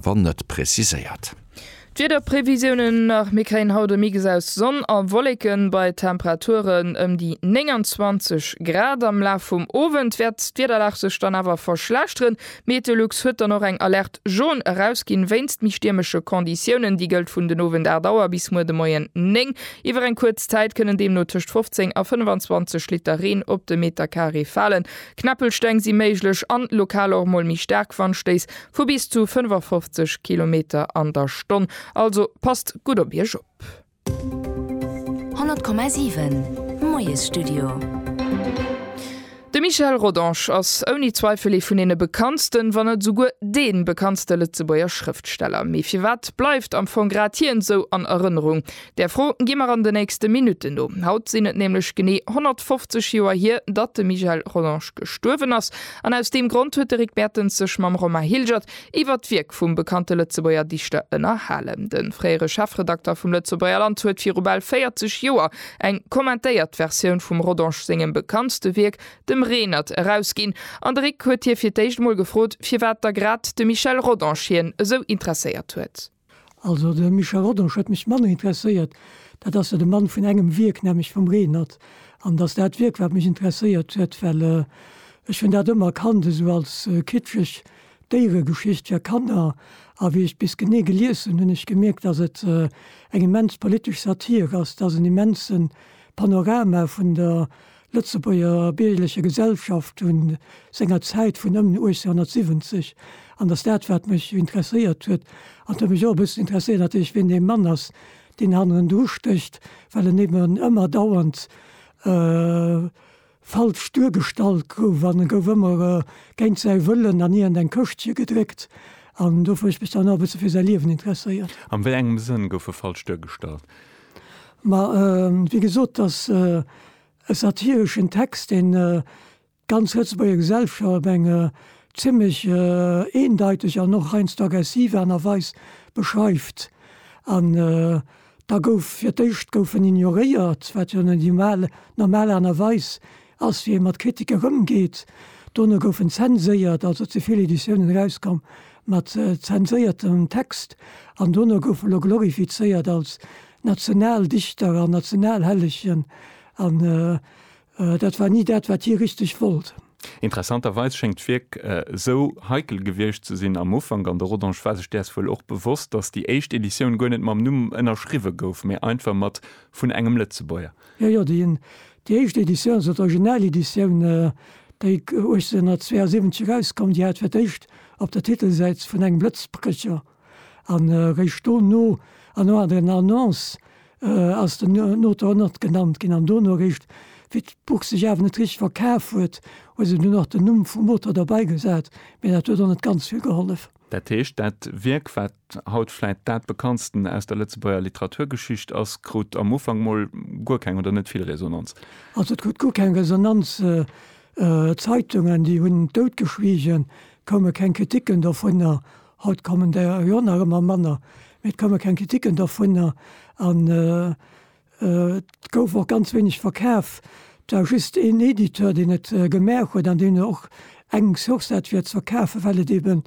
wann net preziséiert. D'Wiederprevisiounen nach, Mir kréien haut e Mix aus Sonn a Wolleken bei Temperaturen ëm déi 29 Grad. Am Laf vum Owend wäert d'Wiederlag sech dann awer verschlechteren. Meteolux huet dann och eng Alerte Jaune erausginn wéinst méi stiermesche Konditiounen. Déi gëllt vun den Owend 8 Auer bis muer de Moien 9. Iwwer eng kuerz Zäit kënnen deemno tëscht 15 a 25 Liter Reen op de Meterkaree falen. Kneppelsteng si méiglech an lokal och mol méi staark Wandstéiss Vu bis zu 55 Kilometer an der Stonn, also passt gutt op Iech op! 100,7 Moiesstudio. De Michel Rodange ass ouni Zweifel ee vun deene bekanntsten, wann net esouguer dee bekanntste Lëtzebuerger Schrëftsteller. Mee firwat bleift am Fong grad hien esou an Erënnerung? Där Fro gi mer an de nächste Minutten no. Haut sinn et nämlech genee 150 Joer hier, datt de Michel Rollange gestuerwen ass. An aus deem Grond huet de Rick Mertens sech mam Romain Hilgert iwwert d'Wierk vum bekannte Lëtzebuerger Dichter ënnerhalen. De fréiere Chefredakter vum Lëtzebuerger Land huet viru bal 40 Joer eng kommentéiert Versioun vum Rodange sengem bekanntste Wierk, dem Renert, erausginn. An de Rick huet hie fir d'éischt emol gefrot, firwat da grad de Michel Rodange hien esou interesséiert huet. Also de Michel Rodange huet mech manner interesséiert, dat ass jo de Mann vun engem Wierk, nämlech vum Renert. An et ass dat Wierk, wat mech interesséiert huet, well ech hunn dat ëmmer kannt esou als kitscheg Déieregeschicht fir Kanner. A wéi ech bis genee gelies hunn, hunn ech gemierkt, datt et eng immens politesch Satire ass, datt en immense Panorama vun der Lëtzebuerger biergerlecher Gesellschaft vu senger Zäit vun ëm 1870 an datt dat wat mech interesséiert huet, an et huet mech och e bëssen interesséiert natierlech wien dee Mann ass, deen hannendru stécht, well en eben ëmmer dauernd falsch duergestallt gouf an e gouf ëmmer géint säi Wëllen an iergend eng Këschtche gedréckt an dofir hu ech mech dann och e bësse fir säi Liewen interesséiert. An wéi engem Sënn gouf e falsch duergestallt? Ma wéi gesot, dass e satireschen Text, deen d'ganz Lëtzebuerger Gesellschaft op eng zimmlech eendeiteg an och heiansdo aggressiv Aart a Weis beschreift. An da gouf fir d'éischt gouf en ignoréiert, wat jo net di normal Aart a Weis Ass, wéi ee mat Kritiker ëmgeet. Dono goufen zenséiert, also ze vill Editiounen erauskomm mat zenséiertem Text, an dono goufe elo glorifizéiert als Nationaldichter an Nationalhellegen, an dat war ni dat, wat hie richteg wollt. Interessanterweis schéngt d'Wierk esou heikel gewiescht ze sinn am Ufank, an de Rodange war sech däers wuel och bewosst, datt déi éischt Editioun guer net mam Numm ënnerschriwwe gouf, mee einfach mat vun engem Lëtzebuerger. Jo, jo, déi éischt Editioun, also d'Original-Editioun, déi 1872 erauskoum, déi hat fir d'éischt op der Titelsäit vun engem Blëtzbrëcher an eréischt dono an no an den Annoncë ass den Auteur och nach genannt ginn. An dono eréischt, wéi d'Buch sech awer net richteg verkaf huet, hu se dunn och den Numm vum Auteur derbeigesat, mä dat huet och net ganz vill gehollef. Dat heescht, dat Wierk, wat haut vläit dat bekanntsten aus der Lëtzebuerger Literaturgeschicht ass, krut am Ufank mol guer keng oder net vill Resonanz. Also et krut guer keng Resonanz, Zeitungen, déi hunn doutgeschwiegen, koume keng Kriticken dovunner. Haut kommen der jo och nach ëmmer manner, mee et koume keng Kriticken dovunner. An Et gouf och ganz wéineg verkaf. Et war just een Editeur, deen et gemaach huet an deen och eng Chance hat fir et ze verkafen, well et eebe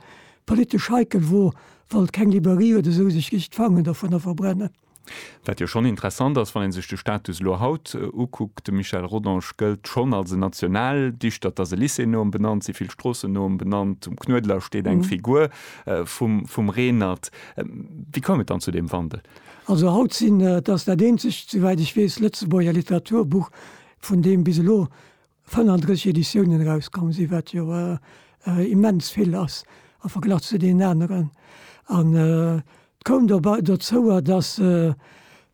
politesch heikel wor, wollt keng Librairie oder esou sech richt d'Fangen dovunner verbrennen. Wat jo schonn interessant ass, wann ee sech de Status elo haut ukuckt, De Michel Rodange gëllt schonn als en Nationaldichter. Et ass e Lycée no em benannt, si vill Stroossen no em benannt, um Knuedler steet eng Figur vum Reenert. Wéi koum et dann zu deem Wandel? Also haut sinn, et ass dat eenzegt, souwäit ech weess, Lëtzebuerger Literaturbuch, vun deem bis elo 35 Editiounen erauskomm sinn, wat jo immens vill ass am Verglach zu deenen aneren. An et koum dobei dozou, datt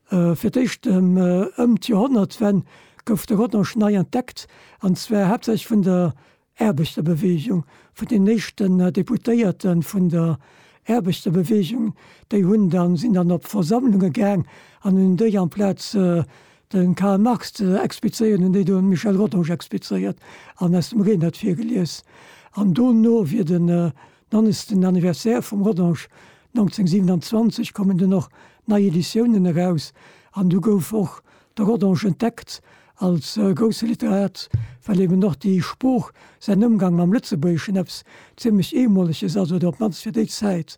fir d'éischt ëm d'Joerhonnertwenn gouf de Rodange nei entdeckt, an zwar haaptsächlech vun der Aarbechterbeweegung, vun den éischten Deputéierte vun der Aarbechterbeweegung, déi hunn dann, sinn dann op Versammlunge gaang an hunn déi amplaz de Karl Marx ze explizéieren, hunn déi do de Michel Rodange explizéiert an aus dem Renert virgelies. An dono wier de Dann ist den Anniversaire vum Rodange 1927, kommen dunn och nei Editiounen eraus an du gouf och de Rodange entdeckt als grousse Literat, well eben och déi Sprooch, säin Ëmgang mam Lëtzebuergeschen eppes zimlech Eemoleges ass oder op d'mannst fir déi Zäit.